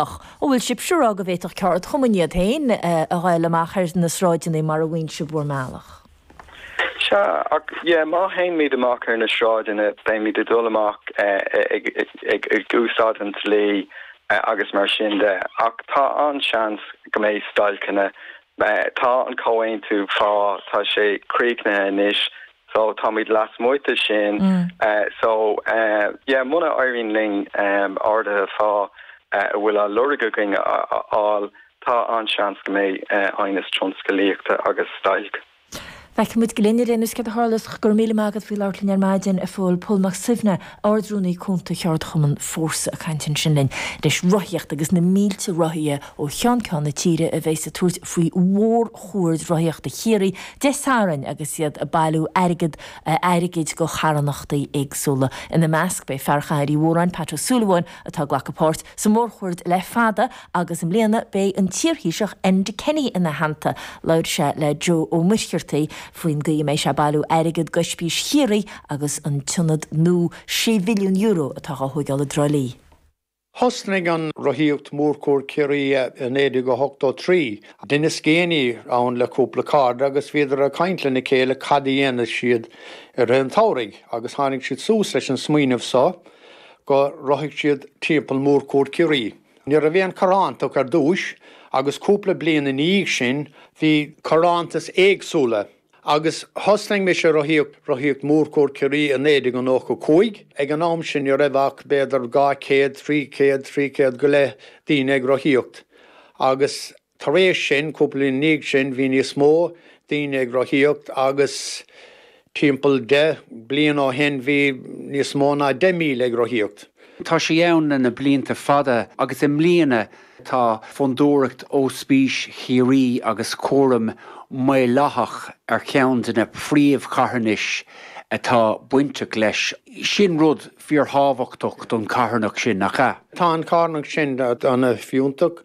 ach an bhfuil sibhse ag rá go bhféadfadh ceardchumainn iad féin a ghabháil amach ar na sráideanna mar a mhaíonn sibh bhur mbealach? Sea, ach yeah, má théimid amach ar na sráideanna, beimid ag dul amach ag úsáid an dlí agus mar sin de, ach tá an-seans go mbeidh stailceanna. Tá an comhaontú pá, tá sé críochnaithe anois, So táimid lasmuigh de sin anois. So yeah, muna éiríonn linn arduithe pá a bhfuil á lorg againn a fháil, tá an-seans go mbeidh aighneas tionsclaíochta agus stailc. Feicfimid go linne, Liam, is cinnte. Tharla, go raibh míle maith agat faoi labhairt linn ar maidin, a Phóil, Pól Mac Suibhne. Ard-Rúnaí Cúnta Cheardchumann Fórsa ag caint ansin linn, leis, rothaíocht agus na mílte rothaithe ó cheann ceann na tíre a bheas ag tabhairt faoi Mhór-Chuaird Rothaíochta Chiarraí Dé Sathairn agus iad ag bailiú airgead airgid go charthanachtaí éagsúla. Ina measc beidh fear Chathair Uí Mhóráin, Pat Ó Súilleabháin, atá ag glacadh páirt sa Mhór-Chuaird le fada, agus i mbliana beidh an t-iarThaoiseach Enda Kenny ina theannta. Labhair sé le Joe Ó Muircheartaigh faoin gcaoi a mbeidh sé ag bailiú airgead d'Ospís Chiarraí agus an t-ionad nua €6 mhilliún atá á thógáil i dTrá Lí. Thosnaigh an rothaíocht Mhórchuaird Chiarraí i 1983. Denis Geaney ann le cúpla cairde agus bhíodar ag caint lena chéile cad a dhéanfadh siad i rith an tsamhraidh agus tháinig siad suas leis an smaoineamh so go rothóidh siad timpeall Mórchuaird Chiarraí. Ní raibh aon carthanacht ar dtúis, agus cúpla bliain ina dhiaidh sin, bhí carthanachtaí éagsúla, agus thosnaigh mise ag rothaíocht Mórchuaird Ciarraí i 1995. Ag an am sin ní raibh ach b'fhéidir 200, 300, 300 go leith daoine ag rothaíocht, agus Tar éis sin, cúpla bliain i ndiaidh sin, bhí níos mó daoine ag rothaíocht agus timpeall deich bliain ó shin bhí níos mó ná 10,000 ag rothaíocht. Tá sé ann le na blianta fada agus i mbliana tá Fondúireacht Ospís Chiarraí agus Cúram Maolaitheach ar cheann de na príomhcharthanais atá bainteach leis. Sin rud fíorthábhachtach don charthanacht sin, nach ea? Tá an charthanacht sin an-fhiúntach.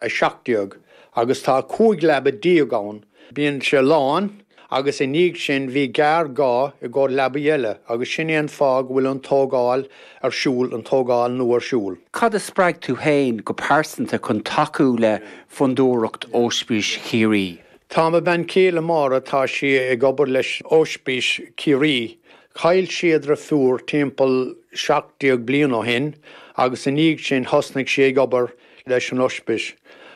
17 agus tá cúig leaba déag ann, bíonn sé lán, agus i ndiaidh sin bhí géarghá i gcomhair leaba eile, agus sin é an fáth go bhfuil an tógáil ar siúl, an tógáil nua ar siúl. Cad a spreag tú féin go pearsanta chun tacú le Fondúireacht Ospís Chiarraí? Tá mo bhean chéile Máire, tá sí ag obair leis Ospís Chiarraí. Chaill sí a deirfiúr timpeall seacht déag bliain ó shin, agus i ndiaidh sin thosnaigh sí ag obair leis an Oispis.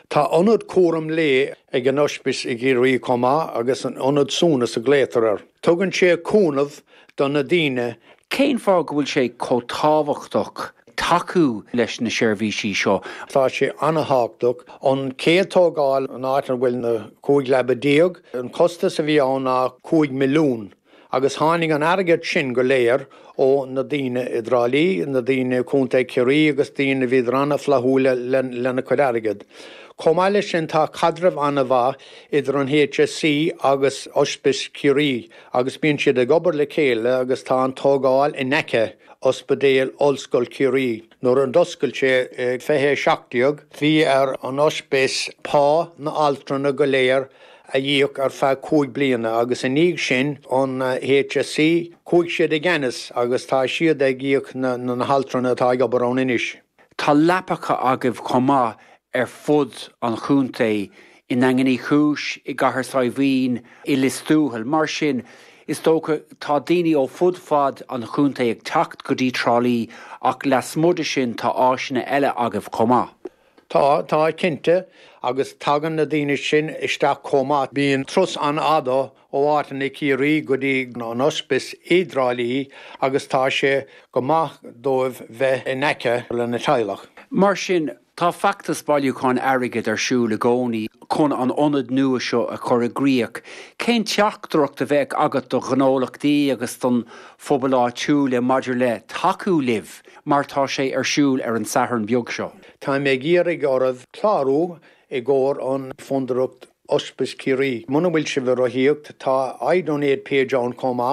Tá ionad cúram lae ag an Oispis i gCiarraí chomh maith agus an Ionad Suaimhneas a glaotar air. Tugann sé cúnamh do na daoine. Cén fáth go bhfuil sé chomh tábhachtach tacú leis na seirbhísí seo? Tá sé an-tábhachtach. An chéad tógáil an áit ina bhfuil na cúig leaba déag, an costas a bhí ann ná cúig milliún. agus tháinig an airgead sin go léir ó na daoine i dTrá Lí, na daoine i Contae Chiarraí agus daoine a bhí an-fhlaithiúil lena cuid airgead. Chomh maith leis sin tá caidreamh an-mhaith idir an HSE agus Oispis Chiarraí agus bíonn siad ag obair le chéile agus tá an tógáil in aice Ospidéal Ollscoil Chiarraí, nuair a d'oscail sé i 2017, bhí ar an Oispis pá na altrana go léir a íoc ar feadh cúig bliana agus i ndiaidh sin an HSE, chuaigh siad i gceannas agus tá siad ag íoc na haltraí atá ag obair ann anois. Tá leapacha agaibh chomh maith ar fud an chontae, i nDaingean Uí Chúis, i gCathair Saidhbhín, i Liostuathail. Mar sin, is dócha, tá daoine ó fud fad an chontae ag teacht go dtí Trá Lí ach lasmuigh de sin tá áiseanna eile agaibh chomh maith. Tá, tá, cinnte, agus tagann na daoine sin isteach chomh maith. Bíonn turas an-fhada ó áiteanna i Ciarraí go dtí an Oispis i dTrá Lí agus tá sé go maith dóibh bheith in aice lena dteaghlach. Mar sin, tá feachtas bailiúcháin airgid ar siúl i gcónaí chun an ionad nua seo a chur i gcrích. Cén teachtaireacht a bheadh agat do ghnólachtaí agus don phobal áitiúil maidir le tacú libh? mar tá sé ar siúl ar an Satharn beag seo. Táim ag iarraidh oraibh clárú i gcomhair an Fondúireacht Oispis Ciarraí. Muna bhfuil sibh ag rothaíocht, tá iDonate page ann chomh maith.